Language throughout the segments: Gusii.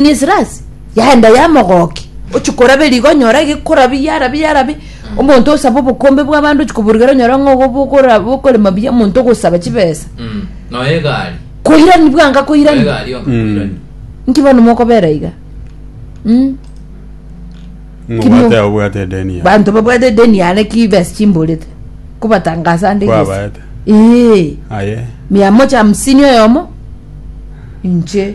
Nisirasi yaenda yamogokia, ochia koraba eriga onyore gekorabia yarabia yarabia omonto osaba obokombe bw'abande ochia koburugera onyore ng'a obo bokora- bokorema buya omonto ogosaba chibesa Mm. Noyo egari. koirani bwango Noyo akoirani egari onga koirani. nki bono mokobera iga Mm. Mobwate abo bwate edeni ya. banto babwate edeni yane ki besa chimborete kobatangasa ande gese Kwabaete. Ee, Aye. mia moja hamsini oyomo inche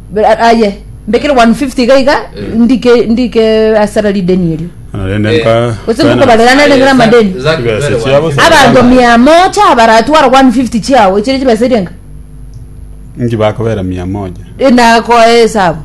Bra- aye mbekere 150 iga iga Eh. ndike ndike asara rideni erio Naende Eh. nka- gose kana- ngokobarerana nere amadeni Exactly, Chibesa very chiabo well. sa- abanto mia moja abaratwara 150 chiao echire chibesa eria enga Inki bakobera mia moja inakoa esabu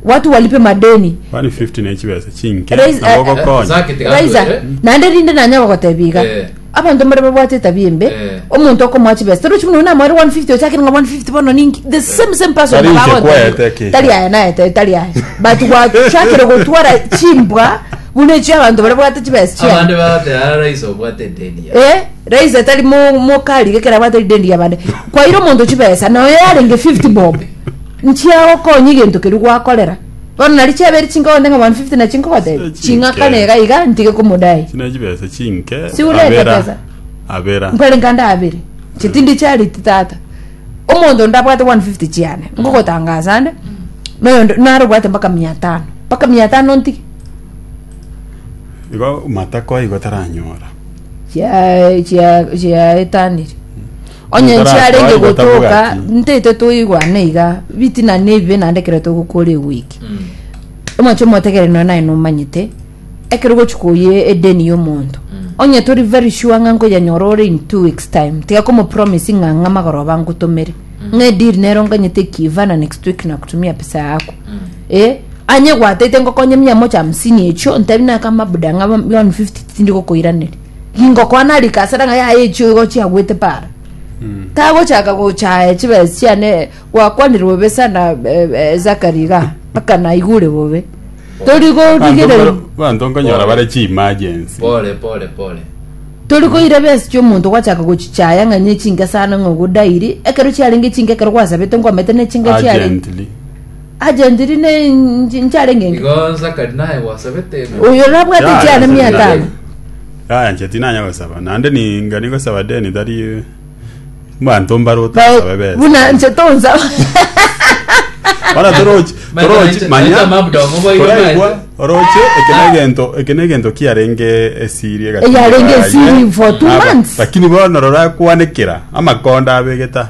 watu walipe madeni 150 ne chibesa chinke Raise- nabo eh, eh, gokonya Zaki tiga Raiza, atwere. naende rinde nanyara gotebia iga Eh. Abanto mbare babwate etabia embe, Eh. omonto okomoa chibesa torochi buna oyo namoere 150 ochakire ng'a 150 bono ninki the same same person Tari nabo inche agotebi, kwaete eke. tari aya naete tari aya but gwachakire gotwara chimbwa buna echio abanto bare babwate chibesa chiabo abande bagote ara raisi obwate edeni ya Eh, raisi atari mo- mokari gekera abwate ridendi yabande kwaire omonto chibesa noyo yarenge 50 bob nchiagokonya egento keria gwakorera Bono nario chiabeire chinko gotenga mambia 50 na chinko gotebia. Chinke. Ching'aka nega iga ntige komodai. Chine chibesa chinke. Si ureta Abera. pesa? Abera. Nkwere nkande abere. Chitindi charity tata. Omonto ndabwate 150 chiane. Ngogotangaza ande. Noyo nd- naro obwate mpaka 500. Mpaka 500 ntige. Igo matako igo taranyora. Chia chia chiaetanire. Onye Nintarakwai nchiarenge gotabuga gotoka, ki? ntaito toigwane iga, bitina na ebibe naende ekero togokora egwiki. Omwancho omotegereri nonya naye nomanyete, ekero ogochi koyia edeni ya omonto, onye tori very sure ng'a nkoyenyora ore in two weeks time, tiga komopromise ng'a ang'e amagoro abe angotomere, ng'a edeal nero nganyete ekiva na next week nakutumia pesa yako. Eh, anyebwatete ngokonye mia moja hamsini echio, ntebi naye kama buda ng'a one fifty tindi gokoiraneria. ingokwana rika asera ng'a yaye echio igo chiagwete para tagochaka gochaya chibesa chiane gwakwanire bobe sana eh, eh, zakari iga mpaka naigure bobe tori gorigereri banto nkonyora bare chimagency pole pole pole tori koira besa chiomonto gwachaka gochichaya ng'a ne chinke sana ng'a ogodairi ekero chiarenge chinke ekero gwasabete nkomete ne chinke chiarenge urgently Agentiri ne nchi- nchare ng'enke. Igo Zakari naye gwasabete ng'a Oyo orabwate Yaya, chiane mia Zakari. etano. Yaya nche tinanya gosaba, naende ninga nigosaba deni tari mbanto mbare otasabe besa. Buna nche tonsaba. Bono torochi, Manya, torochi, manya, manya, manya mabudongo boigo toraigwa, manya. oroche, eke Ah. negento, eke negento kiarenge esiri egati Eyarenge yaye. esiri for two Aba, months. Lakini bono rora kwanekera, amakonda abegeta.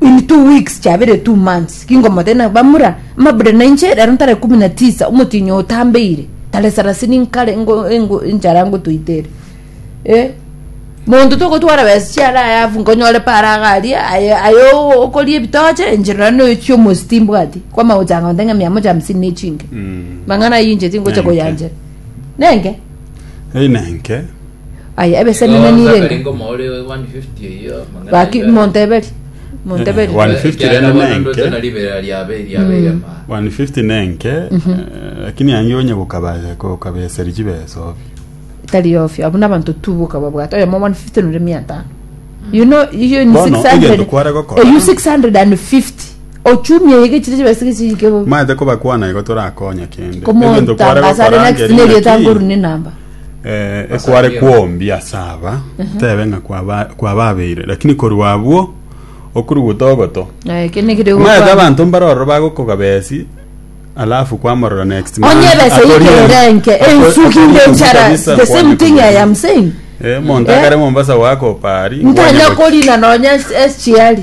In two weeks chabere two months kingomothe na bamura mabure na inche rero ntare kumi na tisa omotinyo otambeire tare sarasini nkare ngo, ngo enchara ngotoitere eh monto togotwara besa chiare ayafu nkonyore pare agari aye aye o- okoria ebitoche inche rora noyochia omosi timbwati kwama gochanga onte ng'a mia moja hamsini na echinke mang'ana ayio inche tingocha Nenge. koyanchera nenge Einenke. Aye ebesenene nirenge. Gaki monteberi. Monteberi. Eh, 150 rende nenke. 150 nenke eh, lakini ange onye gokabasa kokabeseri chibesa obi Tari ofi. Abu na bantu tubu kaba bwata. Oya mwa 150 nure mia tano. You know, you ni Bono, 600. egento kware gokora. Eh, you 650. Ochumia yege chiri chibesa kichike bo. maete kobakwana igo torakonya kende Egento kware Komontangaza gokora nere angeri naki- nerieta nguru ni namba. Eh, ekware kwombi ase aba tebe ng'a kwaba- kwababeire lakini korwa abwo okuruguta ogoto Eh, eke ne kire maete gokwa- abanto mbare ororo bagokogaba esi alafu kwamorora next month, onye ebesa akori ense. ikerenke Ako- ensuki akori nde ense enchara kabisa, the same nkwane thing i am saying Eh, monto Eh? akare mombasa wakopa ari nkanya korina nonya esichiari